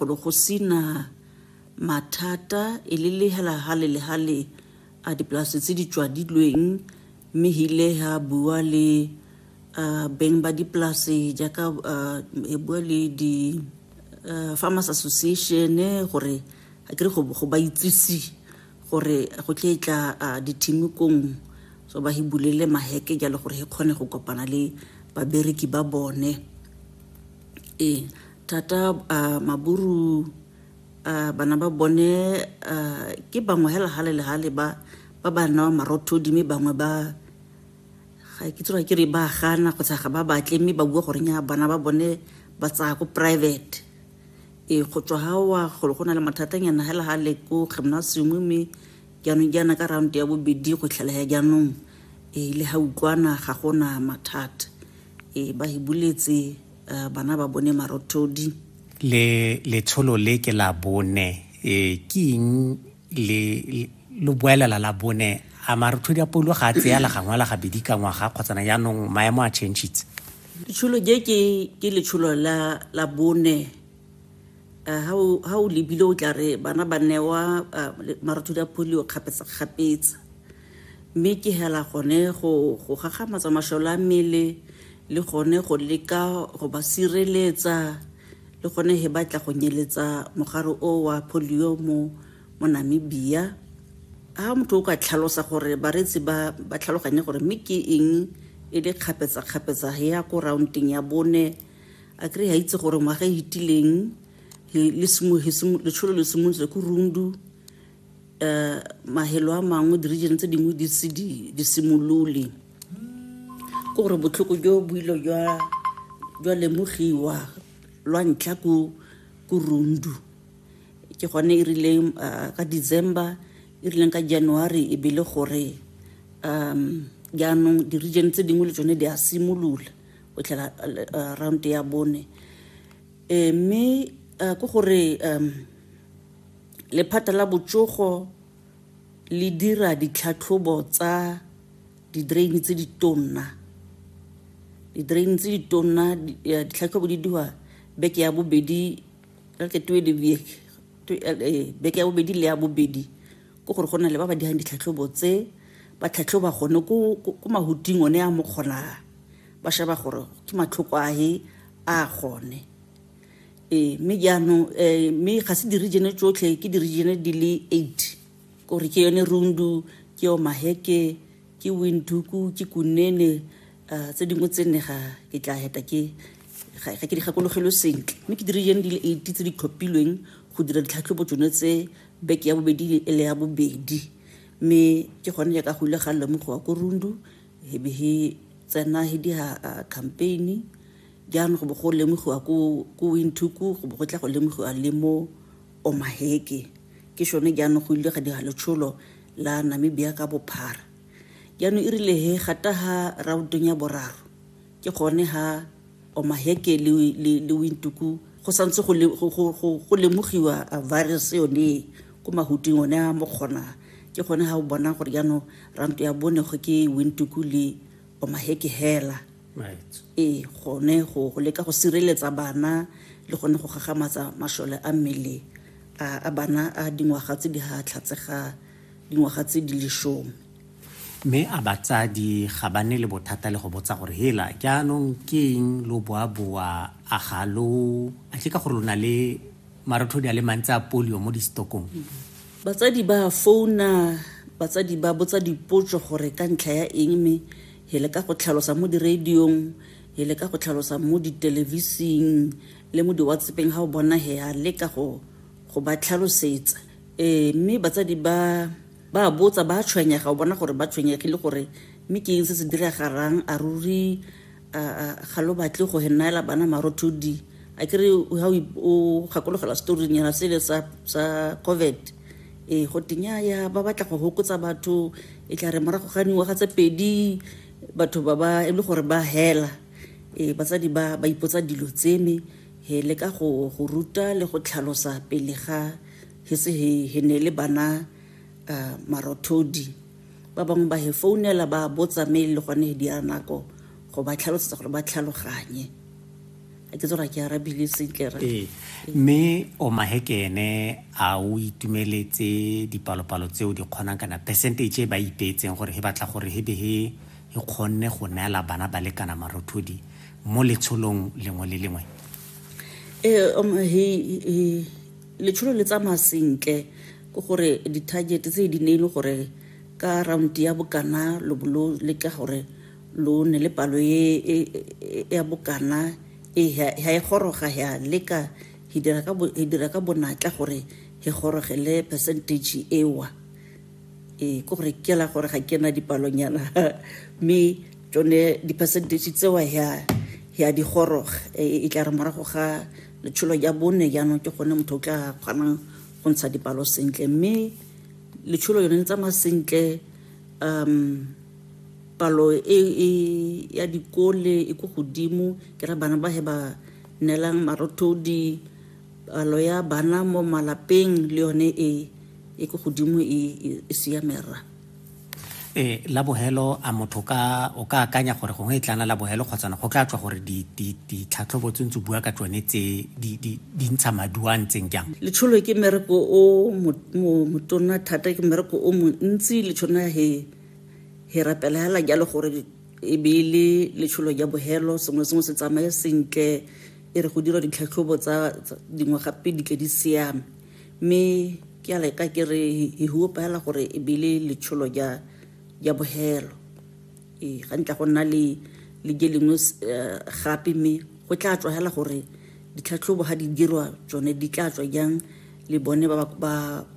Gore go sena mathata e le lehela hale le hale a dipolase tse di tswadilweng mme hile ha bua le uh, beng ba dipolase jaaka uh, e bua le di uh, farmers association gore a kere go, go ba itsise gore go tle tla uh, dithimikong so ba hi bulele maheke jalo gore he kgone go kopana le babereki ba bone ee thata uh, maburu uh, bana ba bone uh, ke bangwe hela gale le gale ba ba ba newa marothodi mme bangwe ba ga ke tsoa ke re ba gana kgotsa ga ba batle mme ba bua goreng ya bana ba bone ba tsaya ko private e go tswa ga wa golo go na le mathatanyana hela ga le ko gymnasium mme jaanong jaana ka round ya bobedi go tlhalaya jaanong e le ga utlwana ga gona mathata e ba e buletse uh, bana ba bone marothodi le letsholo le ke la bone e ke eng le lo boelela la bone a marothodi a paulo ga a tseya la gangwe la gabedi ka ngwaga kgotsana jaanong maemo a changitse letsholo je ke ke letsholo la la bone ha o lebile o tla re bana ba newa marothodi a polio kgapetsa-kgapetsa mme ke hela gone go gagamatsa masholo a mmele le gone go leka go ba sireletsa le gone he batla go nyeletsa mogare o wa polio mo mo namibia ha motho o ka tlhalosa gore bareetsi ba ba tlhaloganye gore mme ke eng e le kgapetsa-kgapetsa ya ko roundeng ya bone a kry a itse gore ngwaga e itileng letsholo le simolotse ko rundu um eh, mahelo a mangwe di-region tse dingwe di se di simolole ke gore botlhoko jo boilo jwa lemogiwa lwa ntlha ko rundu ke gone e rileng eh, ka december e rileng ka january e bele gore um jaanong di-region tse dingwe le tsone di a simolola o tlela uh, round ya bone e mme uh, ke gore um lephata la botsogo le dira ditlhatlhobo tsa di-drain tse di tonna di-drain tse di tonna eh, ditlhatlhobo di diwa beke ya bobedi ke twe le beke beke ya bobedi le ya bobedi ke gore go na le ba ba dirang ditlhatlhobo tse ba tlhatlhoba gone ko mahuting one a mo kgonang ba sheba gore ke matlhoko ahe a gone ee mme jaanong um mme ga se diregene tsotlhe ke diregene di le eight kore ke yone rundu ke yo maheke ke winduku ke kunene um tse dingwe tse nne ga ke tla heta ke ga ke di gakologelwe sentle mme ke diregene di le eight tse di tlhophilweng go dira ditlhatlhobo tsone tse Beke ya bobedi e le ya bobedi mme ke gone jaaka go ile ga lemogiwa ko Rundu he be he tsena he diha uh, campaign jaanong go bo go lemogiwa ko ko Windhoek go bo go tla go lemogiwa le mo Omaheke ke shone jaanong go ile ga diha letsholo la Namibia ka bophara jaanong e rile he gata ha rautong ya boraro ke gone ha omaheke le, le, le wintuku go santse go, le, go, go, go, go lemogiwa virus yone ko mahuting one a mo kgona ke gone ga o bona gore jaanong ranto ya bonego ke wintuku le omaheke hela ee gone go leka go sireletsa bana le gone go gagamatsa masole a mmele a bana a dingwaga tse di ga tlhatsega dingwaga tse di lesome Mme a batsadi ga ba ne le bothata le go botsa gore hela jaanong ke eng lo boaboa a ga lo a tle ka gore lo na le marothodi a le mantsi a polio mo distokong batsadi ba founa batsadi ba botsa dipotso gore ka ntlha ya eng mme he le ka go tlhalosa mo diradiong he le ka go tlhalosa mo ditelevising le mo diwatsepeng ga o bona he a leka go go ba tlhalosetsa um mme batsadi ba Ba a botsa, ba a tshwenyega, o bona gore ba tshwenyegile gore mme ke eng se se diragalang, a ruri ga lo batle go henaela bana marothodi. A kere ha o gakologela storing yana sele sa sa COVID e go tenya ya ba batla go hokotsa batho e tla re morago ga dingwaga tse pedi batho ba ba e le gore ba hela e batsadi ba ba ipotsa dilo tseme he le ka go go ruta le go tlhalosa pele ga Hese he, he ne le bana uh, marothodi ba bangwe ba he founela ba botsa me le gone he di a nako go ba tlhalosetsa gore ba tlhaloganye a ke tsora ke arabile sentle ra ee mme o mahekene a o itumeletse dipalopalo tseo di kgonang kana percentage e ba ipeetseng gore he batla gore he be he e kgonne go neela bana ba lekana marothodi mo letsholong lengwe le lengwe ee um, he, he, letsholo le tsamaya sentle ke gore di-target tse di ne e le gore ka round ya bokana lo bo lo leka gore lo ne le palo e, e, e ya bokana e ha e goroga ya leka he dira ka he dira ka bonatla gore he gorogele percentage ewa e ke gore ke la gore ga ke na dipalonyana mme tsone di-percentage tsewa ya ya di goroga e, e tla re morago ga letsholo ya bone jaanong ke gone motho o tla kgonang go ntsha dipalo sentle mme letsholo yone le tsamaya sentle um palo e, e ya dikole e ko godimo ke ra bana ba he ba neelang marothodi palo ya bana mo malapeng le yone e e ko godimo e, e, e siamera Ee, la bogelo a motho ka o ka akanya gore gongwe e tlana la bogelo kgotsana go tla tswa gore ditlhatlhobo tse ntse bua ka tsone tse di ntsha maduo a ntseng jang letsholo ke mmereko o motona thata ke mmereko o montsi letshona he he rapela hela jalo gore e be e le letsholo ja bogelo sengwe sengwe se tsamaye sentle e re go dira ditlhatlhobo tsa dingwaga pedi tle di siame mme ke a leka ke re he hope hela gore e bile letsholo ja ja bohelo ee ga ntla go nna le le je lengwe eh, gape mme go tla tswa hela gore ditlhatlhobo ga di dirwa tsone di tla tswa jang le bone ba ba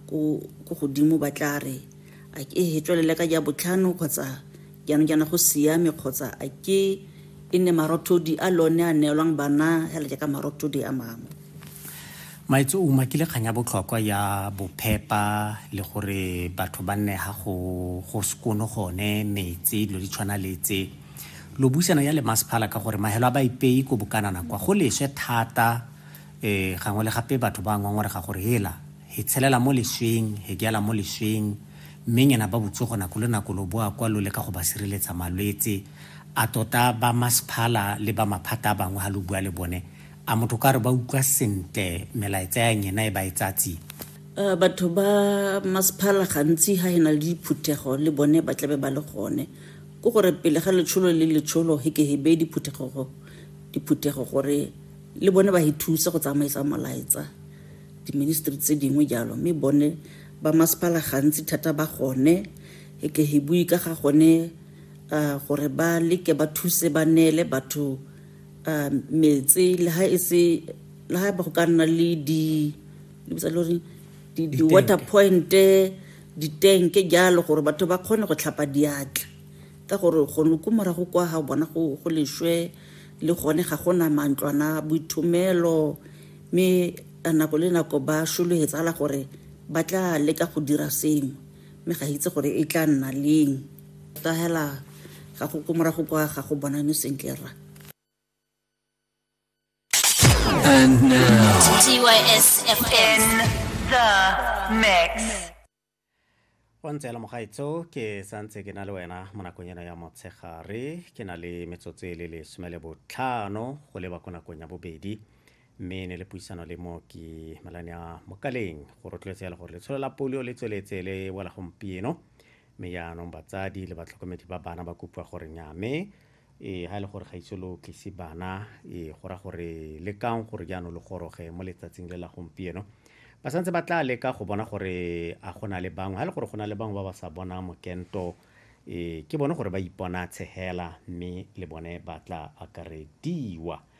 ko godimo ba tla re a ke e tswelele ka ja botlhano kgotsa jaanong jaana go siame kgotsa a ke e nne marothodi a lone a neelwang bana hela jaaka marothodi a mangwe maetso o makile kgang ya botlhokwa ya bophepa le gore batho ba nne ga go go sekono gone metsi dilo di tshwana le tse lo buisana ya le masephala ka gore mahelo a ba ipei ko bokanana kwa go leswe thata um gangwe le gape batho ba ngongorega gore hela he tshelela mo lesweng he ke mo lesweng mme nyena ba botsogo nako le nako lo boa kwa lo le ka go ba sireletsa malwetse A tota ba masephala le ba maphata a bangwe ha lo bua le bone, a motho o ka re ba utlwa sentle melaetsa ya nyena e ba e tsaya tsia? A batho ba masephala gantsi ha e na le diphuthego le bone ba tlabe ba le gone. Ke gore pele ga letsholo le letsholo he ke he beye diphuthego diphuthego gore le bone ba he thuse go tsamaisa molaetsa diministry tse dingwe jalo, mme bone ba masephala gantsi thata ba gone he ke he bue ka ga gone uh, gore ba leke ba thuse ba neele batho uh, metse le ha e se le ha ba go ka nna le di lebitsa le gore di-water pointe ditenke jalo gore batho ba kgone go tlhapa diatla ka gore gone ko morago kwa ga bona go leswe le gone ga gona mantlwana boithomelo mme nako le nako ba shologetsa la gore ba tla leka go dira sengwe mme ga itse gore e tla nna leng ta hela ga go ko morago kwa ga go bonane sentle ra And now, TYS FM. The Mix. o ntse le mogaetso ke santse ke na le wena mo nakong ena ya motshegare ke na le metsotso e le lesome le botlhano go leba ko nakong ya bobedi mme ne le puisano le mooki malane a mokaleng go rotloetsa ya le gore letsholo la polio le tsweletse le wela gompieno mme jaanong batsadi le batlhokomedi ba bana ba kopiwa gore nyame e ga e le gore ga itse lo tlise bana e go ra gore le kang gore jaanong le goroge mo letsatsing le la gompieno ba santse ba tla leka go bona gore a go na le bangwe ga e le gore go na le bangwe ba ba sa bonang mokento e ke bone gore ba ipona tshegela mme le bone ba tla akarediwa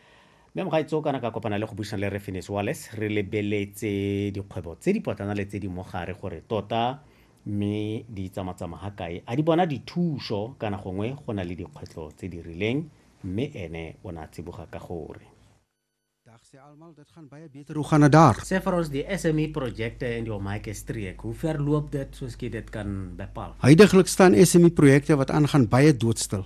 Mme Mogaitso kana ka kopana le go buisana le Refinis Wales re lebeletse dikgwebo tse dipotlana le tse di mogare gore tota mme di tsamatsama ga kae a di bona dithuso kana gongwe go na le dikgwetlho tse di rileng mme ene o ne a tsiboga ka gore. Dag sê almal dit gaan baie beter hoe gaan dit daar? Sê vir ons die SME projekte in die Omaike streek, hoe ver loop dit soos jy dit kan bepaal? Huidiglik staan SME projekte wat aangaan baie doodstil.